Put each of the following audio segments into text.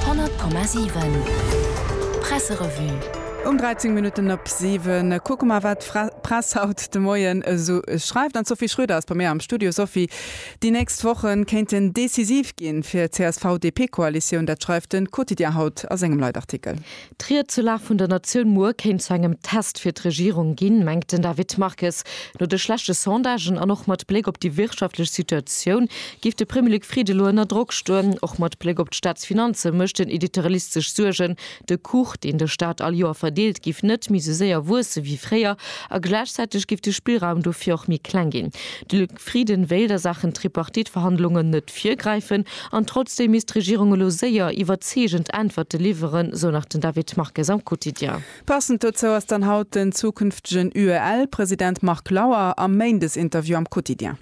100,7 Presserevue. Um 13 Minutten op 7 kucke mer, wat d'Press haut de Moien esou schreift. An d'Sophie Schröder ass bei mir am Studio. Sophie, déi nächst Woche kéinten decisiv ginn fir d'CSV-DP-Koalitioun. Dat schreift de Quotidien haut a sengem Leitartikel. D'Ried zur Lag vun der Natioun muer kéint zu engem Test fir d'Regierung ginn, mengt den David Marques. No de schlechte Sondagen an och mat Bléck op déi wirtschaftlech Situatioun géif de Premier Luc Frieden elo ënner Drock stoen. Och mat Bléck op d'Staatsfinanze mécht den Editorialist sech Suergen. De Kuch, deen de Staat all Joer verdeelt, géif net méi sou séier wuesse wéi fréier a gläichzäiteg géif de Spillraum dofir och méi kleng ginn. De. Frieden wéilt a Saachen Tripartite-Verhandlungen net virgräifen an trotzdeem misst d'Regierung elo séier iwwerzeegend Äntwerte liwweren, sou nach den David Marques am Quotidien. Passend dozou ass dann haut den zukünftegen UEL-President Marc Lauer am Méindesinterview am Quotidien.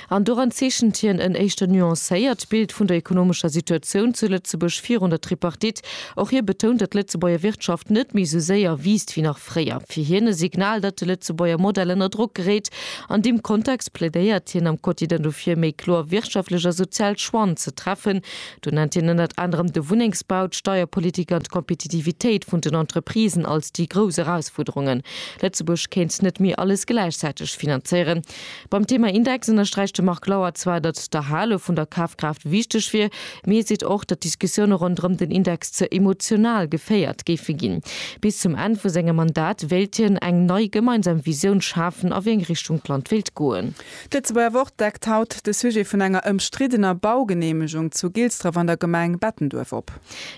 An doran zeechent hien en éischter nuancéiert Bild vun der ekonomescher Situatioun zu Lëtzebuerg virun der Tripartite. Och hie betount, datt d'Lëtzebuerger Wirtschaft net méi sou séier wiisst wéi nach. fréier, fir hien e Signal, datt de Lëtzebuerger Modell ënner Drock geréit. An deem Kontext plädéiert hien am Quotidien dofir, méi kloer wirtschaftlech a sozial Choixen ze treffen. Do nennt hien ënnert anerem de Wunnengsbau, d'Steierpolitik an d'Kompetitivitéit vun den Entreprisen als déi grouss Erausfuerderungen. Lëtzebuerg kéint net méi alles gläichzäiteg finanzéieren. Beim Thema Index ënnersträicht de Marc Lauer zwar, datt d'Erhale vun der Kafkraaft wichteg wier, mee hie seet och, datt d'Diskussioune ronderëm den Index ze emotional geféiert géife ginn. Bis zum Enn vu sengem Mandat wéilt hien eng nei gemeinsam Visioun schafen a wéi eng Richtung d'Land wéilt goen. D'Lëtzebuerger Wort deckt haut de Sujet vun enger ëmstriddener Baugeneemegung zu Gilsdref an der Gemeng Bettenduerf op.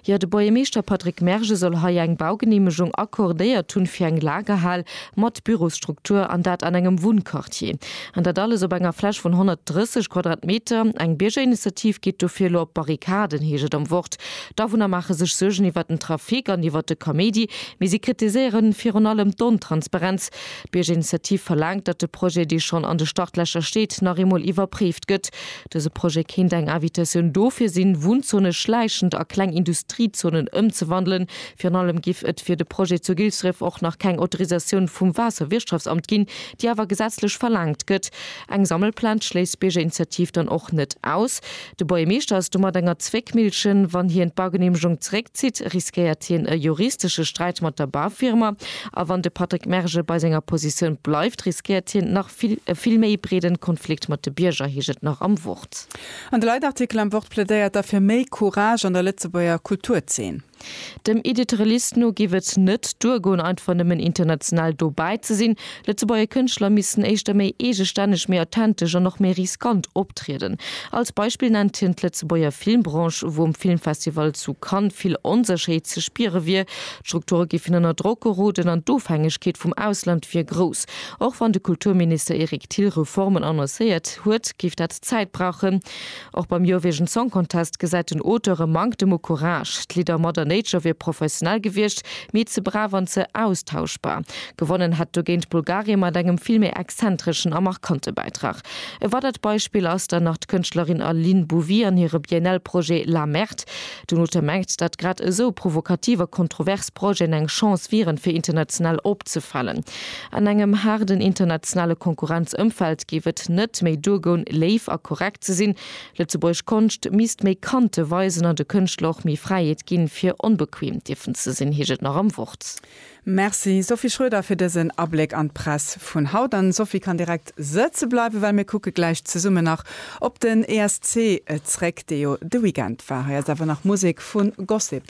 Jo, de Buergermeeschter Patrick Merge soll hei eng Baugeneemegung accordéiert hunn fir eng Lagerhal mat Bürosstruktur, an dat an engem Wunnquartier. An dat alles op enger Fläch vun 130 Quadratmeter. Eng Biergerinitiativ geet dofir elo op d'Barrikaden, heescht et am Wort. D'Awunner maache sech Suergen iwwert den Trafic an iwwert de Kaméidi, mee si kritiséiere virun allem d'Ontransparenz. D'Biergerinitiativ verlaangt, datt de Projet, dee schonn an de Startlächer steet, nach eemol iwwerpréift gëtt. Dëse Projet kéint eng Invitatioun dofir sinn, Wunnzone schläichend a kleng Industriezonen ëmzewandelen. Virun allem giff et fir de Projet zu Gilsdref och nach keng Autorisatioun vum Waasserwirtschaftsamt ginn, déi awer gesetzlech verlaangt gëtt. Eng Sammelplaz schléisst d'Biergerinitiativ dann och net aus. De Buergermeeschter ass domat enger Zwéckmillchen. Wann hien d'Baugeneemegung zeréckzitt, riskéiert hien e juristesche Sträit mat der Baufirma. A wann de Patrick Merge bei senger Positioun bleift, riskéiert hien nach. E vill méi breeden Konflikt mat de Bierger heescht et nach am Wort. An de Leitartikel am Wort plädéiert da fir méi Courage an der Lëtzebuerger Kulturzeen. Dem Editrelist no géif et net duergoen einfach nëmmen international dobäi ze sinn. Lëtzebuerger Kënschtler missten éischter méi eegestänneg, méi authentesch an och méi riskant optrieden. Als Beispill nennt hien d'Lëtzebuerger Filmbranche, wou um Filmfestival zu Cannes vill Onsécherheet ze spiere wier. D'Strukture géifen ënner Drock geroden an d'Ofhängegkeet vum Ausland wier grouss. Och wann de Kulturminister Eric Thill Reformen annoncéiert huet, géif dat Zäit brauchen. Och beim Eurovision Song Contest gesäit den Auteur e Manktem u Courage. D'Lidder Mother Nature wier professionell gewiescht, mee ze brav an ze austauschbar. Gewonnen hätt dogéint Bulgarien mat engem vill méi exzentreschen a markante Bäitrag. E weidert Beispill ass dann nach d'Kënschtlerin Aline Bouvy an hire BNL-Projet La Merde. D'UNOTAM mengt, dat grad esou provokativ a kontrovers Projeten eng Chance wieren, fir international opzefalen. An engem haarden internationale Konkurrenzëmfeld géif et net méi duergoun, léif a korrekt ze sinn. Lëtzebuergesch Konscht misst méi Kante weisen an de Kënschtler och méi Fräiheet ginn, fir onbequem dierfen ze sinn, heescht et nach am Wort. Merci Sophie Schroeder fir dësen Abléck an d'Press vun haut. An d'Sophie kann direkt sëtze bleiwen, well mir kucke gläich zesummen nach op den ESC zréck, dee jo de Weekend war. Hei ass awer nach Musek vu Gossip.